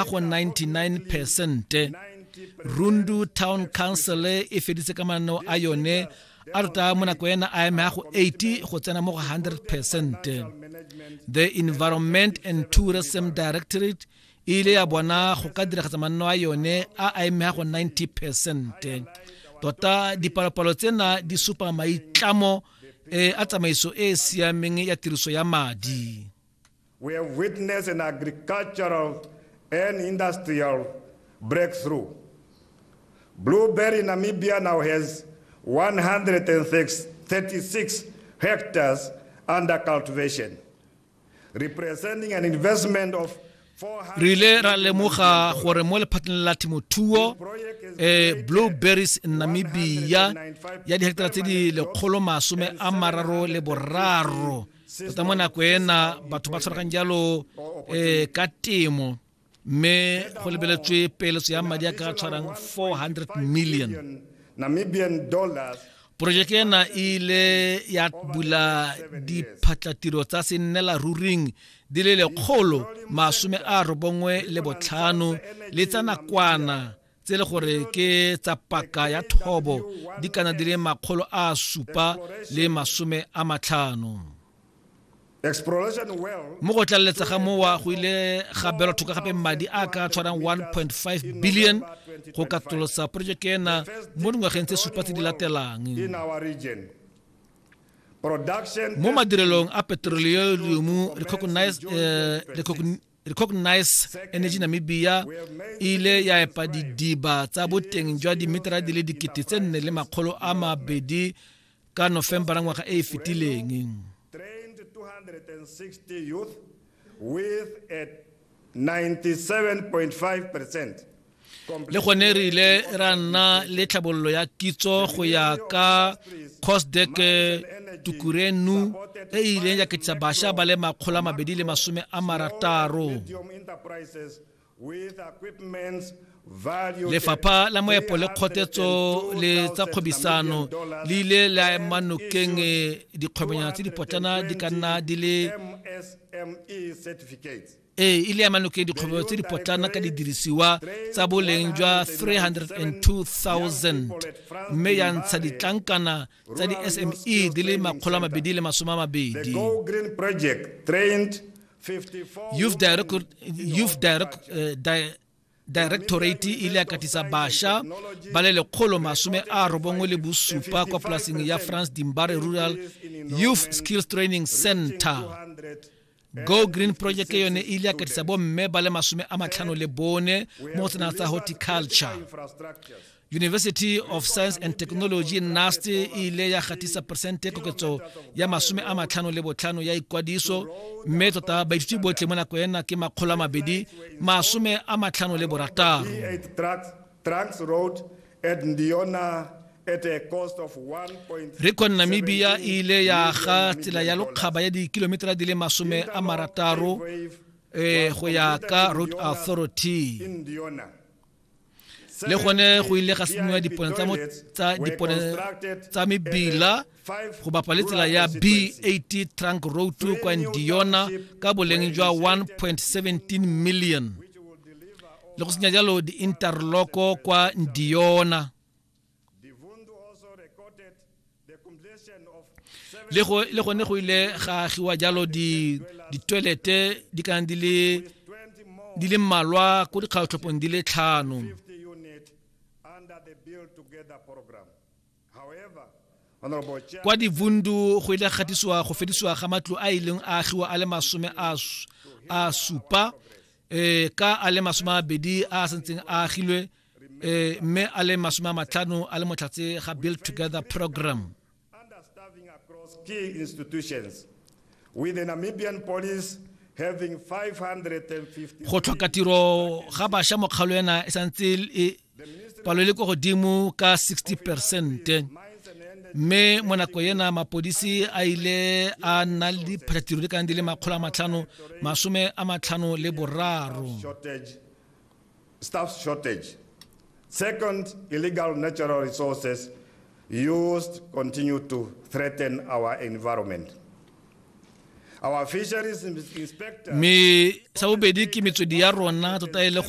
a go 99 percente rundu town council e feditse ka mananeo a yone a rota mo nako ena a eme go 80 go tsena mo go 100 percent the environment and tourism directorate e ile ya bona go ka diragatsa manno a yone a a eme go 90 percent tota dipalopalo tsena di supa maitlamo eh, a tsamaiso e e siameng ya tiriso ya madi We have witnessed an agricultural and industrial breakthrough. Blueberry Namibia now has 136 hectares under cultivation, representing an investment of re ile ra lemoga gore mo lephateng la temothuo eh, blueberries namibia ya diheketara tse di lekgolo masome a mararo le boraro tota mo nako ena batho ba tshwaragang jalo um ka temo mme go lebeletswe peeletso ya madi a ka tshwarang 400 million namibian dollars porojeke ena e ile ya bula diphatlatiro tsa sennela ruring di le lekgolo masome a robongwe le botlhano le tsa nakwana tse le gore ke tsa paka ya thobo di kana di le makgolo a supa le masome a matlhano mo go tlaleletsa ga mowa go ile ga belwa thoka gape madi a ka tshwarang 1.5 billion go katolosa projeke ena mo dingwageng tse supa tse di latelang mo madirelong a petroleum recognized, uh, eh, recogn recognize energy namibia e ile ya epa didiba tsa boteng jwa dimetera di le dikete tse nne le makgolo a mabedi ka nofembara ngwaga e e fetileng with a 97.5 percent le gone re ile ra nna le tlhabololo ya kitso go ya ka cosdek tukurenu e e ileng ya ketisa bašwa ba le makgolo a mabedi le masome a marataro lefapha la moepo le kgotetso le tsa kgwebisano le ile la ema nokeng dikgwebonyana tse dipotlana di ka nna di le ee e le ya manoko ya dikgwebo tse di potlana ka didirisiwa tsa boleng jwa 302000 mme ya ntsha ditlankana tsa di-sme di le makgolo a mabedi le masome a mabedi youth direct, youth direct, uh, di directorate e ile ya katisa basha ba le lekgolo masome a robongwe le bosupa kwa polaseng ya france dimbare rural youth skills training center go green project yone e ile ya katisa bomme ba le masome a matlhano le bone mo go tsena tsa horticulture University of Science and Technology NUST e ile ya gatisa persente koketso ya masome a matlhano le botlhano ya ikwadiso mme tota baithuti botlhe mo nako ena ke makgolo a mabedi masome a matlhano le borataro recon namibia e ile ya ga tsela ya lokgaba ya dikilometera di le masome a marataro um go ya ka road authority le gone go ile ga senoa dipone tsa mebila go bapa le tsela ya bat trunk road kwa ndiona ka boleng jwa 1.17 million le go senya jalo di-interloko kwa ndiona le gone go ile ga agiwa jalo ditwelete di kana di le di le mmalwa ko dikgaotlhopong di le tlhano kwa divundu go ile gatisiwa go fedisiwa ga matlo a ileng a agiwa a le masome a supa um ka a le masome a mabedi a a santseng a agilwe e mme a le masome a matlhano a le motlhatse ga build together program key institutions with the Namibian police having 550 go tlhoka tiro ga basha mokgalo ena e santse e palo le ko godimo ka 60 percent mme mo nako ena mapodisi a ile a nna le diphathatiro di kana di le makgolo a matlhano masome a matlhano le boraro Staff shortage. Second, illegal natural resources used continue to threaten our environment. Our fisheries inspector... Mme sa bobedi ke metswedi ya rona tota e le gore